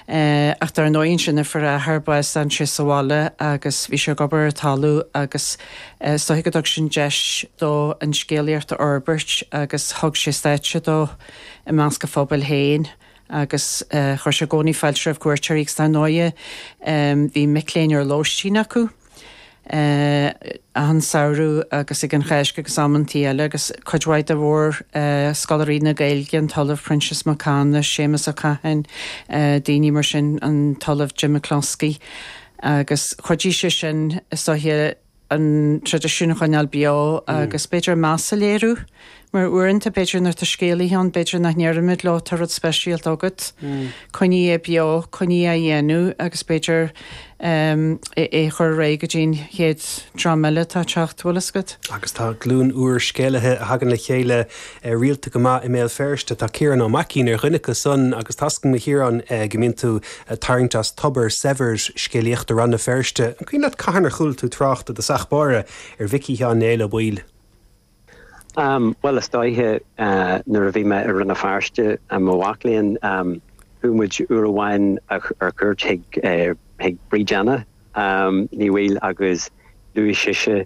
Ach dar ndóigh ansin nuair a fuair a athair bás d'fhan sé sa bhaile agus bhí sé ag obair ar an talamh agus is dóiche go dtug sin deis dó an scéalaíocht a fhorbairt agus thug sé stáitse dó i measc a phobail féin agus chuir sé i gcónaí fáilte roimh chuairteoirí agus dar ndóigh bhí mic léinn ar lóistín acu. ag an samhradh agus ag an Cháisc agus amanntaí eile agus cuid mhaith de mhórscoláirí na Gaeilge, an tOllamh Proinsias Mac Cana, Séamus Ó Catháin, daoine mar sin, an tOllamh Jim McCloskey. Agus chuidigh sé sin, is dóiche, an traidisiún a choinneáil beo agus b'fhéidir meas a léiriú. Mar uaireanta b'fhéidir nuair atá scéalaithe ann b'fhéidir nach ndeirimid leo tá rud speisialta agat, coinnigh é beo, coinnigh é á dhéanamh agus b'fhéidir é a chur réidh go dtí an chéad dream eile atá ag teacht, bhfuil fhios agat. Agus tá glúin úr scéalaithe ann a thagann le chéile rialta go maith i mBéal Feirste, tá Ciarán Mac Giolla Bhéin ar dhuine acu san agus tá 's agam a Chiaráin go mbíonn tú ag tarraingt as tobar saibhir scéalaíochta Rann na Feirste, an cuimhin leat cathain ar chuala tú trácht i dtosach báire ar Mhicí Sheáin Néill Ó Baoill? Bhuel, is dóiche nuair a bhí mé i Rann na Feirste i mo mhac léinn, chuaigh muid uair amháin ar cuairt chuig Bríd Anna Ní Bhaoill agus luaigh sise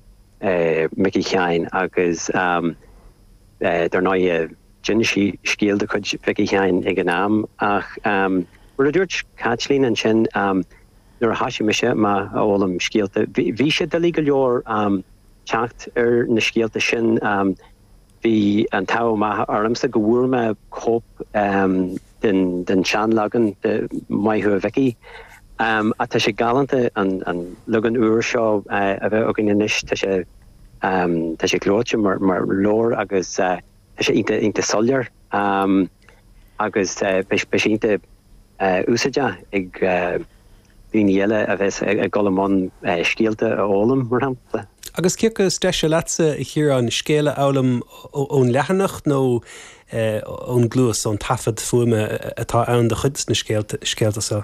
Micí Sheáin agus dar ndóigh d'inis sí scéal de chuid Mhicí Sheáin ag an am ach mar a dúirt Caitlín ansin nuair a thosaigh mise a fhoghlaim scéalta bhí sé doiligh go leor teacht ar na scéalta sin, bhí an t-ádh maith ormsa go bhfuair mé cóip den seanleagan de 'Maith thú a Mhicí'. Tá sé galánta an leagan úr seo a bheith againn anois, tá sé, tá sé gleoite mar leabhar agus. Tá sé iontach, iontach soiléir agus beidh sé iontach úsáideach ag daoine eile a bheas ag dul i mbun scéalta a fhoghlaim, mar shampla. Agus cé acu is deise leatsa, a Chiaráin, scéal a fhoghlaim ón leathanach nó ón gcluas, ón taifead fuaime atá ann de chuid de na scéalta seo?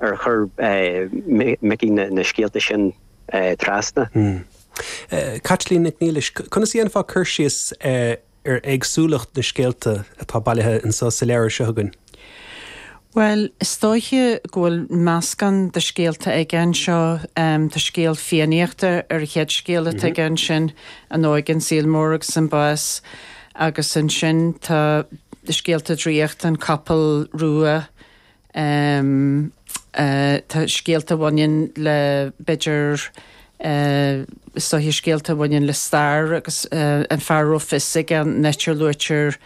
ar chuir Micí na scéalta sin trasna? Caitlín Nic Niallais, Conas a dhéanfá cur síos ar éagsúlacht na scéalta atá bailithe anseo sa leabhar seo againn? Bhuel, is dóiche go bhfuil meascán de scéalta aige anseo. Tá scéal Fiannaíochta ar an chéad scéal atá aige ansin, An Óige, an Saol Mór agus an Bás, agus ansin tá scéalta draíochta, An Capall Rua, em. eh. tá scéalta a bhaineann le, b'fhéidir, eh. is dóiche scéalta a bhaineann le stair agus eh. an fear a raibh fios aige, in áit ar luaitear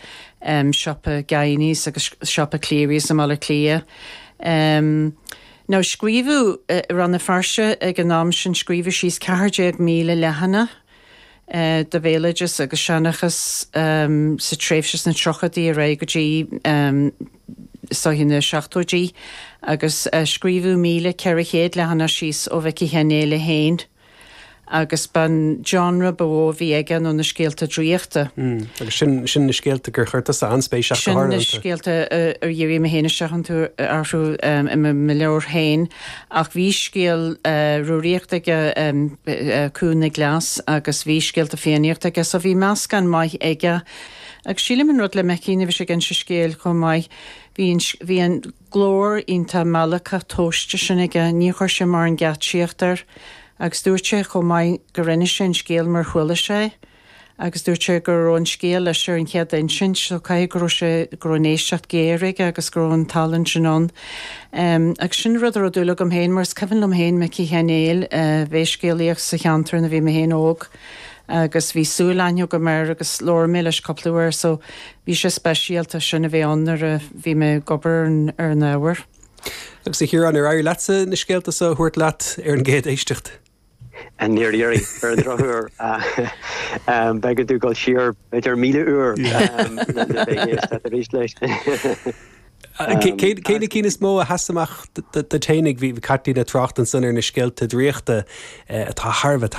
em. siopa Guiney's agus siopa Clery's i mBaile Átha Cliath. Em. now scríobhadh eh. i Rann na Feirste ag an am sin scríobhadh síos ceathair déag míle leathanach de bhéaloideas agus seanchas sa tréimhse sna tríochaidí ar aghaidh go dtí is dóiche na seachtóidí agus scríobhadh míle ceithre chéad leathanach síos ó Mhicí Sheáin Néill é féin agus ba an genre ba mhó a bhí aige nó na scéalta draíochta. Agus sin sin na scéalta gur chuir tusa an-spéis ach go háirithe iontu. Sin na scéalta ar dhírigh mé féin isteach iontu, orthu i mo leabhar féin. Ach bhí scéal Rúraíochta aige, Cú na gCleas, agus bhí scéalta Fiannaíochta aige, so bhí meascán maith aige. Agus sílim an rud le Micí, nuair a bhí sé ag inse scéil chomh maith, bhí an, bhí an glór iontach meallacach tomhaiste sin aige, ní chuir sé mórán geaitsíocht air. Agus dúirt sé chomh maith go rinne sé an scéal mar a chuala sé é. agus dúirt sé go raibh an scéal leis ar an chéad insint, so caithfidh go raibh sé, go raibh an éisteacht géar aige agus go raibh an tallann sin ann. Agus sin rud a raibh dúil agam féin, mar is cuimhin liom féin Micí Sheáin Néill a bheith ag scéalaíocht sa cheantar nuair a bhí mé féin óg agus bhí súilaithne agam air agus labhair mé leis cúpla uair so bhí sé speisialta sin a bheith ann nuair a bhí mé ag obair ar an ábhar. Agus a Chiaráin, ar éirigh leatsa na scéalta so a thabhairt leat ar an gcéad éisteacht? Níor éirigh, ar an drochuair. B'éigean dúinn dul siar b'fhéidir míle uair le bheith ag éisteacht arís leis. Cé na cinn is mó a sheas amach duit féinig? Bhí Caitlín ag trácht ansan ar na scéalta draíochta atá thar a bheith